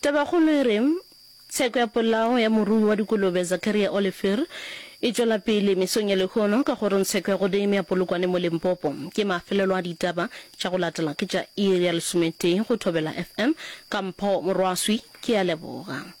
Tabakgolo e re, Tsheko ya polao ya morui wa dikolobe Zakaria Oliphir e tšwela pele mesong ya lehono ka kgorong tsheko ya Godime ya Polokwane mo Limpopo. Ke mafelelo a ditaba tša go latela ke tša iri ya lesometee go Thobela FM. Ka mpho Morwaswi ke a leboga.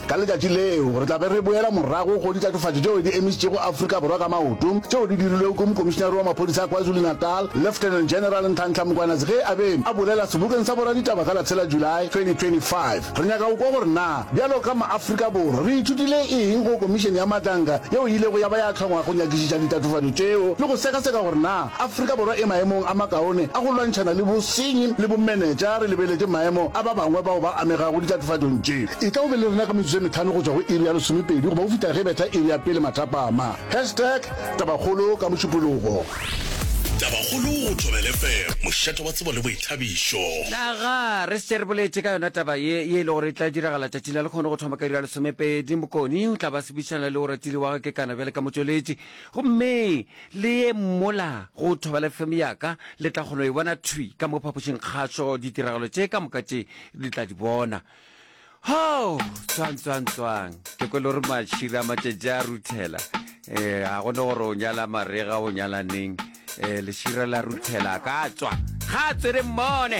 Ka letšatši leo, re tla be re boela morago go ditatofatšo tšeo di emišitšego Afrika Borwa ka maoto, tšeo di dirilwego ke Mokomišinare wa Maphodisa a KwaZulu-Natal, Lieutenant General Nhlanhla Mkhwanazi ge a be a bolela sebokeng sa boraditaba ka la tshela July 2025. Re nyaka go kwa gore na bjalo ka maAfrika Borwa re ithutile eng go Komišene ya Matlanka yeo e ilego ya ba ya hlongwa go nyakišiša ditatofatšo tšeo le go sekaseka gore na Afrika Borwa e maemong a makaone a go lwantšhana le bosenyi le bomenetša re lebeletše maemo a ba bangwe bao ba amegago ditatofatšong tše. E tla o be le rena ka metsotso e metlhano go tšwa go iri ya lesomepedi goba go fihla ge e betha iri ya pele mathapama. Hashtag Tabakgolo ka Mošupologo. Tabakgolo go Thobela FM, mošate wa tsebo le boithabišo. Na ga re se re boletše ka yona taba ye, ye e lego gore e tla diragala tšatšing la lekgono go thoma ka iri ya lesomepedi? Mokoni o tla ba sebišana le Oratile wa ga Kekana bjale ka motšweletši. Gomme le ye mola go Thobela FM ya ka le tla kgona go e bona thwi ka mo phapošing kgašo ditiragalo tše ka moka tše le tla di bona. hao tswang tswang tswang ke kwele gore matšhira matšetše a ruthela um ga gone gore o nyala marega o nyala neng um lešira la ruthela ka tswa ga tswere mmone